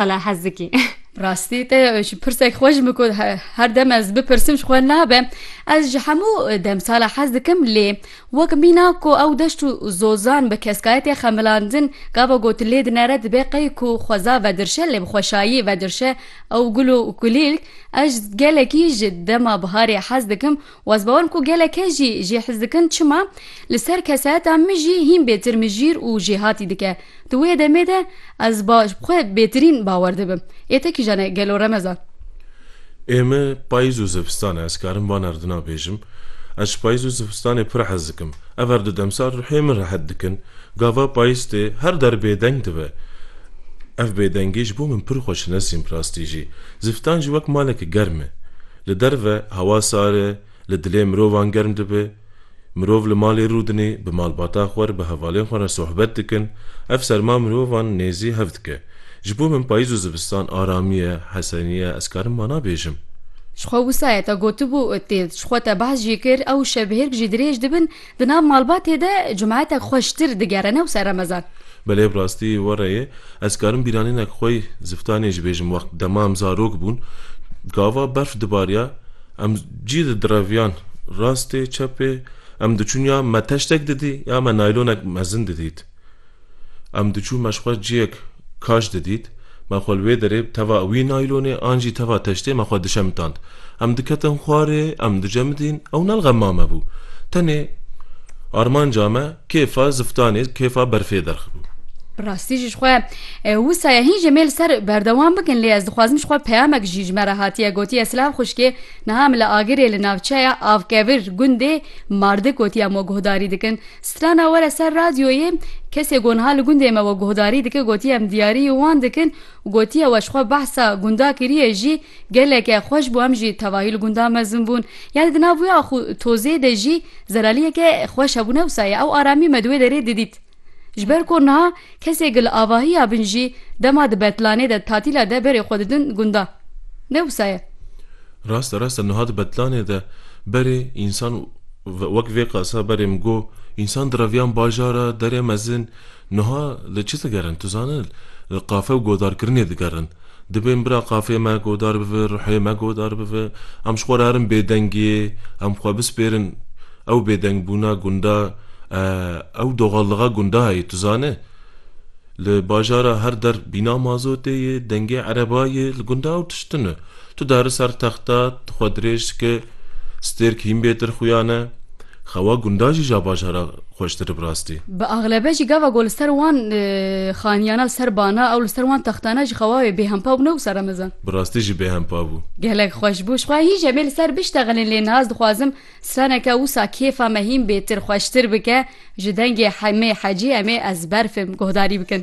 Qala Hezikî. Rastî te ji pirsek xwe ji min ku her dem ez bipirsim ji xwe nabe ez ji hemû demsala hez dikim lê wek mîna ku ew deşt û zozan bi keskayetê xemilandin gava got lê dinere dibe qey ku xweza vedirşe lê bi xweşayî vedirşe ew gul û kulîlk ez gelekî ji dema biharê hez dikim Waz bawerim ku geleke jî jê hez dikin çima li ser kesayeta min jî hîn bêtir mijîr û jêhatî dike. Di wê demê de ez ba ji xwe bêtirîn bawer dibim. Ê te kîjan e gelo remezan? Ê me payîz û zivistan e ez karim van erdina bêjim. Ez ji payîz û zivistanê pir hez dikim. Ev her du demsal ruhê min rehet dikin. Gava payîz tê her der bêdeng dibe. Ev bêdengî ji bo min pir xweş e ne sîn bi rastî jî. Zivistan jî wek maleke germ e. Li derve hewa sar e, li dilê mirovan germ dibe. Mirov li malê rûdinê, bi malbata xwe re, bi hevalên xwe re sohbet dikin. Ev serma mirovan nêzî hev dike. Ji bo min payîz û zivistan aramî ye, hesenî ye, ez karim wana bêjim. Ji xwe wisa ye te gotibû, tê ji xwe te behs jî kir, ew şevhêrk jî dirêj dibin, Di nav malbatê de cumaetek xweştir digere ne wisa remezan. Belê bi rastî were ye. Ez karim bîranînek xwe yê ziftanê jî bêjim wext dema em zarok bûn gava berf dibariya em cî di direviyan rastê çepê em diçûn ya me teştek didî ya me naylonek mezin didît. Em diçûn me ji xwe ciyek kaş didît, me xwe li wê derê bi teva wî naylonê an jî teva teştê me xwe dişemitand. Em diketin xwarê, em dicemidîn, ew ne li gel ma me bû. Tenê armanca me kêfa ziftanê, kêfa berfê derx bû. Bi rastî jî ji xwe wisa ye hîn jê mêl ser berdewam bikin lê ez dixwazim ji xwe peyamek jî ji me re hatiye gotiye silav xwişkê niha em li Agirê li navçeya Avkevir gundê Mardik gotiya me guhdarî dikin Strana were ser radyoyê kesê ku niha li gundê me we guhdarî dike gotiye em diyarî wan dikin û gotiye we ji xwe behsa gunda kiriye jî geleke xweş bû em jî tevahî li gunda mezin bûn yanî di nav wê axû tozê de jî zeraliyeke xweş hebûne wisa ye ew aramî me di wê derê didît ji ber ku niha Kesê ki li avahiya bin jî dema di betlanê de tatîla de berê xwe didin gunda. Ne wisa ye. Rast e rast e nuha di betlanê de berê însan wek vê qasa berê min got însan direviyan bajara derê mezin nuha li çi digerin tu zane li qafe û godarkirinê digerin. Dibên bira qafê me godar bive, ruhê me godar bive. Em ji xwe re herin bêdengiyê, em xwe bispêrin. Ew bêdengbûna gunda, ew doxallixa gunda heye. Tu zane li bajara her der bîna mazotê ye, dengê ereba ye. Li gunda ew tişt ne. Tu diherî ser texta, tu xwe dirêj dike, stêrk hîn bêtir xuya ne. Xewa gundan jî ja bajara xweştir bi rastî. Bi axlebe jî gava ku li ser wan xaniyana li ser bana ew li ser wan textana jî xewa wê bêhempa bû ne wisa remezan. Bi rastî jî bêhempa bû. Gelek xweş bû. Ji xwe hîn jî em ê li ser biştexilin lê niha ez dixwazim straneke wisa kêfa me hîn bêtir xweştir bike ji dengê Hemê Hecî em ê ezber fêm guhdarî bikin.